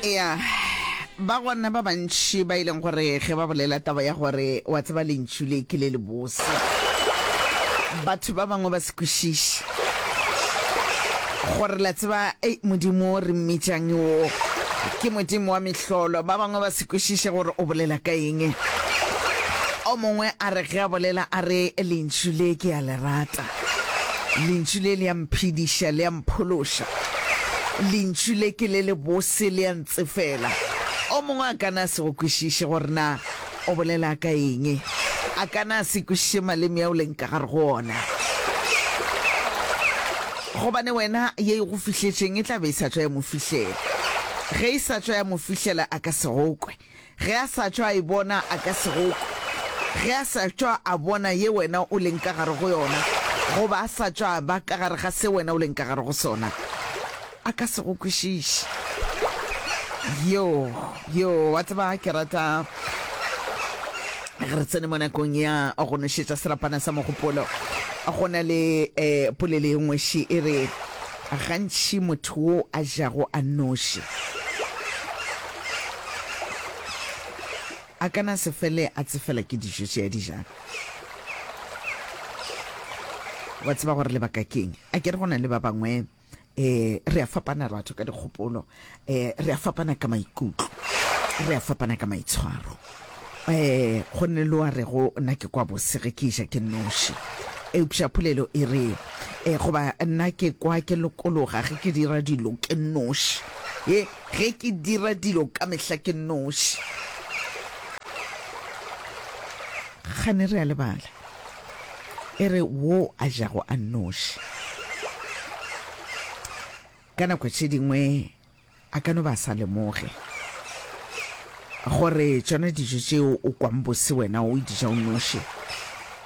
ya ba gona ba bantši ba e leng gore ge ba bolela taba ya gore wa tseba lentšu le ke le lebose batho ba bangwe ba se kwešiše gore la tseba ei modimo re mmitšang o ke modimo wa mehlolo ba bangwe ba se kwešiše gore o bolela ka eng o mongwe a re ge a bolela a re lentšu le ke a le rata Lentšu le le a mphediša, le a mphološa. Lentšu le ke le lebose, le a ntsefela. O mongwe a ka na a se go kwešiše gore na o bolela ka eng. A ka na a se kwešiše maleme ao leng ka gare go ona. Gobane wena ye e go fihletšeng e tla be e sa tšwa ya mo fihlela. Ge e sa tšwa ya mo fihlela a ka se go kwe. Ge a sa tšwa a e bona, a ka se go kwe. Ge a sa tšwa a bona ye wena o leng ka gare go yona, goba a sa tšwa a ba ka gare ga se wena o leng ka gare go sona, a ka se go kwešiše. Yo, yo, wa tseba, ke rata ge re tsene mo nakong ya go nošetša serapana sa mogopolo, go na le um polelo e nngwe še e re, A gantši motho wo a jago a nnoši a ka na se fele a tsefela ke dijo tše a di jago. Wa tseba gore lebaka keng? Akere go na le ba bangwe um re a fapanarato ka dikgopolo. E, re a fapana ka maikutlo, re a fapana ka maitshwaro. E, go nne lo a rego nna ke kwa bose ge ke iša ke noši. Eupša polelo e re, e, goba nna ke kwa ke lokologa ge ke dira dilo ke noši. E, ge ke dira dilo ka mehla ke noši. Gane re a lebala. E re wo a jago a noši. Ka nako tše dingwe a ka no ba a sa lemoge gore tšona dijo tšeo o kwang bose wena o di ja o noši,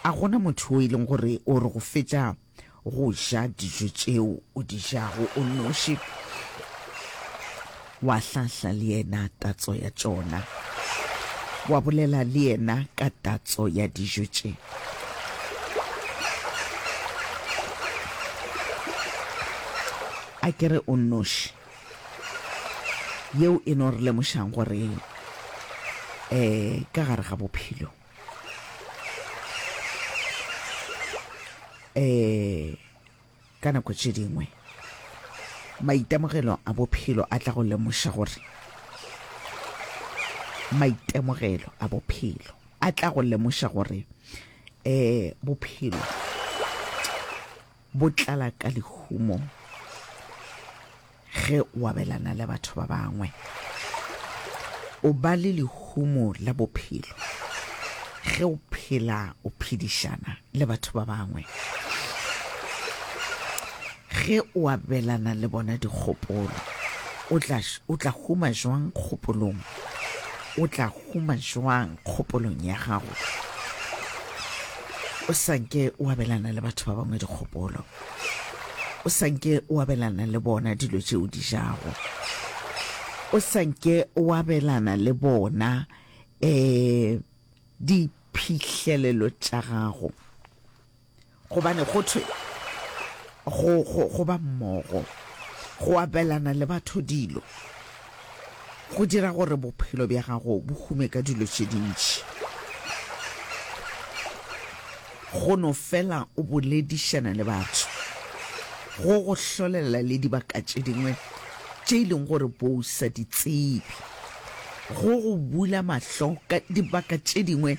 a go na motho yo e leng gore o re go fetša go ja dijo tšeo o di jago o noši. Wa hlahla le yena tatso ya tšona, wa bolela le yena ka tatso ya dijo tše. A ke re o nnoši? Yeo e no re lemošang gore eh ka gare ga bophelo eh Ka nako tše dingwe maitemogelo a bophelo a tla go lemoša gore maitemogelo a bophelo a tla go lemoša gore um bophelo bo tlala ka lehumo Ge o abelana le batho ba bangwe, o ba le lehumo la bophelo. Ge o phela o phedišana le batho ba bangwe, ge o abelana le bona dikgopolo, o tla, o tla huma jwang kgopolong? O tla huma jwang kgopolong ya gago? O sa nke o abelana le batho ba bangwe dikgopolo. O sa nke o abelana le bona dilo tše o di jago. O sa nke o abelana le bona um diphihlelelo tša gago gobane go thwe go, go, go ba mmogo go abelana le batho dilo Go dira gore bophelo bja gago bo hume ka dilo tše dintši. Go no fela o boledišana le batho go go hlolela le dibaka tše dingwe tše e leng gore bo o sa di tsebe. Go go bula mahlo ka dibaka tše dingwe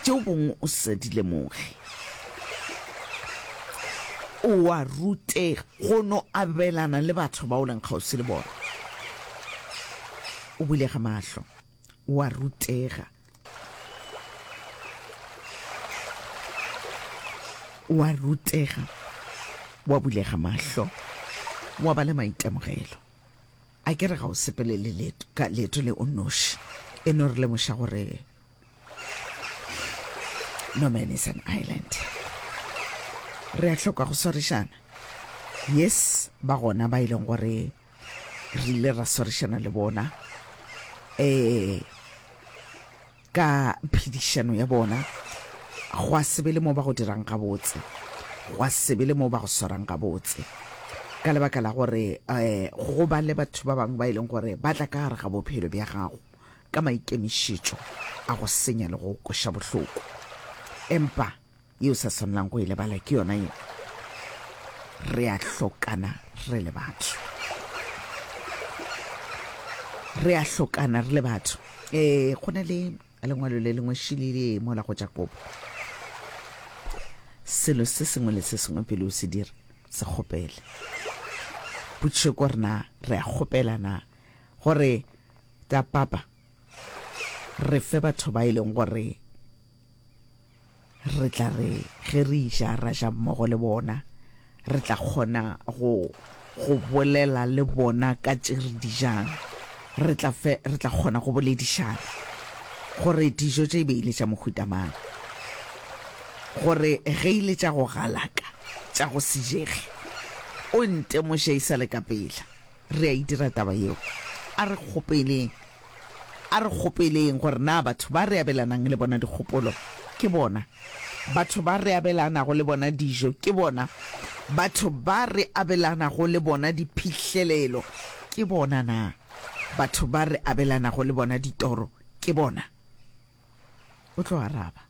tšeo bongwe o sa di lemoge. O a rutega go no abelana le batho ba o leng kgauswi le bona. O bulega mahlo. O a rutega. O a rutega. O a bulega mahlo. O a ba le maitemogelo. A ke re ga o sepelele leeto, ka leeto le o nnoši. E no re lemoša gore no man is an island. Re a hloka go swarišana. Yes, ba gona ba e leng gore re ile ra swarišana le bona. Eh, Ka phedišano ya bona, gwa se be le mo ba go dirang gabotse, gwa se be le mo ba go swarang gabotse, ka lebaka la gore um go ba le batho ba bangwe ba e leng gore ba tla ka gare ga bophelo bja gago ka maikemišetšo a go senya le go kweša bohloko. Empa. yeo sa swanalang go e lebala ke yona ye re a hlokana re le batho re a hlokana re le batho um go na le lengwalo le lengwe šilile mola go jakobo selo se sengwe le se sengwe pele o se dira se kgopele potšišo ko rena re a kgopela na gore ta papa re fe batho ba e leng gore Re tla re ge re iša ra ja mmogo le bona, re tla kgona go go bolela le bona ka tše re di jang, re tla fe, re tla kgona go boledišana gore dijo tše e be e le tša mohuta mang, gore ge e le tša go galaka, tša go se jege, o ntemoše e sa le ka pela. Re a e dira taba yeo. A re kgopeleng. A re kgopeleng gore na batho ba re abelanang le bona dikgopolo ke bona. Batho ba re abelanago le bona dijo ke bona. Batho ba re abelanago le bona diphihlelelo ke bona na. Batho ba re abelanago le bona ditoro ke bona. O tlo araba.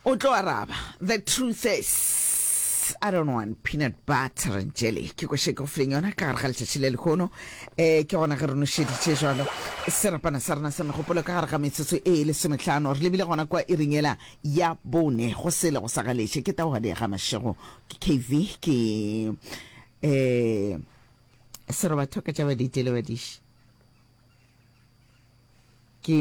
O tlo araba. The truth is, I don't want peanut butter and jelly. Ke kwa sheke go fileng yona ka gare ga letšatši le lehono. Eh, ke gona ge re nošeditše jalo. Serapana sa rena sa megopolo ka gare ga metsotso e lesometlhano. Re lebile gona kwa e ringela ya bone. Go sele go sa galetše. Ke taoga di ga mašego. Ke KV. Ke... Eh... Serobatho ka tša badite le badiši.